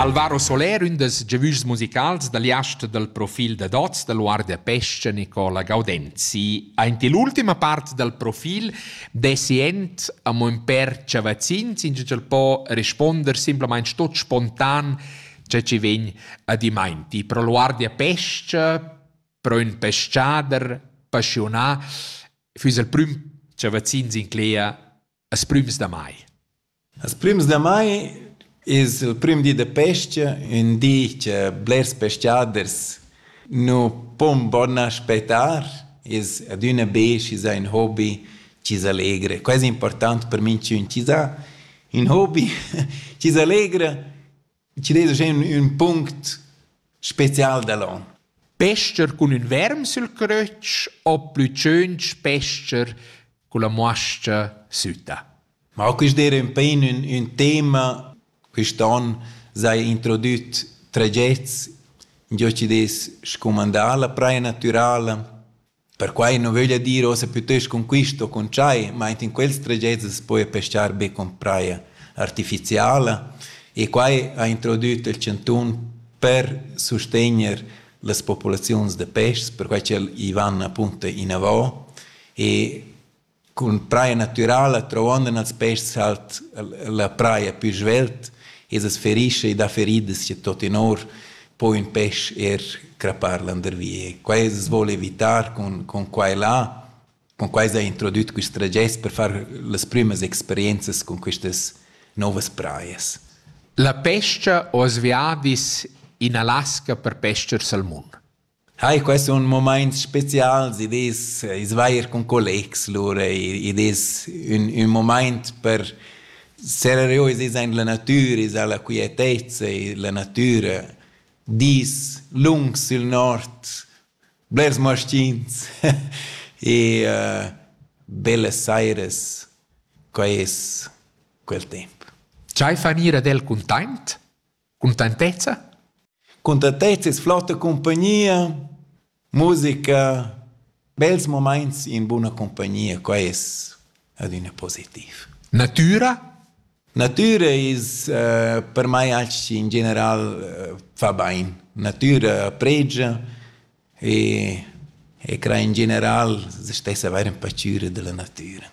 Alvaro Soler, ün dels giavüschs musicals da liast dal profil da Dots da Guardia Pesce Nicola Gaudenzi. Aint l'ultima part dal profil dessi ent amo ün per chavazzins, in ch'el po responder simplamaing tot spontan che ci vegn a dimainti. Pro Guardia Pesce, pro ün peschader passionà, füss il prüm chavazzins in clea Las prümas da mai. Las prümas da mai es il prüm di da pes-cha, ün di cha blers pescaders nu pon bun aspettar, es adüna be schi s'ha ün hobi chi s'allegra. Quai es important per minchün chi s'ha ün hobi chi s'allegra Chi desa schen ün punct special da l'on? Pester cun ün verm sül crötsch o plü tschöntsch pester culla muascha sütta? Ma quist d'eira ün pain ün, ün tema. Quist on s'haja introdüt tragets, ingio chi'd es scumandà la praja natürala. Perquai nu vöglia dir uossa pütöst cun quist o cun tschai, ma aint in quels tragets as poja pescar be cun praja artificiala e quai ha introdüt il chantun per sustegner las populaziuns da peschs, perquai ch'el i van appunto inavo e Cun praia natürala truondan als peschs halt la praia pü svelt e as ferischa e dà feridas cha tuottenor po ün pesch eir crappar landervi e quai as voul evitar cun cun quai là. Cun quai s'ha introdüt quist tragest per far las prümas experienzas cun quistas nouvas praias. La pes-cha ho as viadis in Alaska per pes-cher sal mun. Ai, quai sun mumaints spezials, id es ais vair cun collegs lura, id es ün ün mumaint per serrer giò i aint la natüra, esa la quietezza, la natüra, dis lungs sül nord, blers maschins e bellas sairas, quai es quel temp. Dschai fan ir ad el cuntaint? Cuntentezza? Cuntentezza es flotta cumpagnia, musica, bels mumaints in buna cumpagnia, quai es adüna positiv. Natüra? Natüra es uh, per mai anche in general uh, fa bain. Natüra pregia e, e cra in general se stessa avair ün pacüra da la natüra.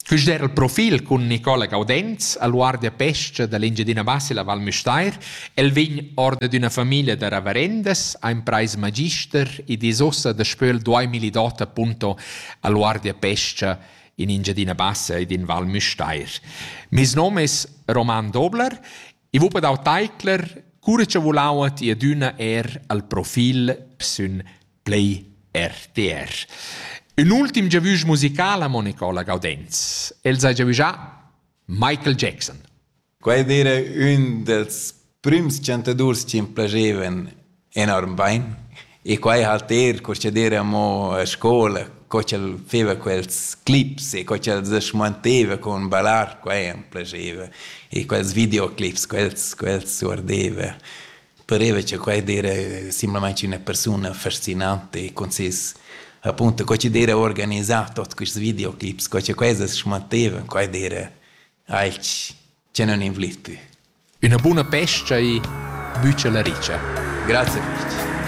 Quist era il profil cun Nicola Gaudenz al guardapescha da l'Engiadina Bassa la Val Müstair. El vegn or dad üna famiglia da ravarendas, ha imprais magister ed es uossa daspö il 2008 appunto al guardapescha in Engiadina Bassa ed in Val Müstair. Meis nom es Roman Dobler I vul per dau teicler, cura cha vulau ti adüna er al profil sün Play RTR. Un ultim giavüsch musicala, Monicola Gaudenz. El s'ha giavüschà Michael Jackson. Quai dire ün dels prüms chantadurs chi m'plagevan enorm bein. E quei halt er curschader amo a scola, co ch'el feva quels clips e co ch'el se schmanteva con ballar, quei am piaceva. E quels videoclips, quels, quels guardeva. Pareva che quei era simplamaing üna persuna fascinante e con ses appunto co ch'd era organisà tot quists videoclips, co che quai se schmanteva, quai era alch Tgei non invliti? Üna buna pescha e bütscha la richa. Grazia fich.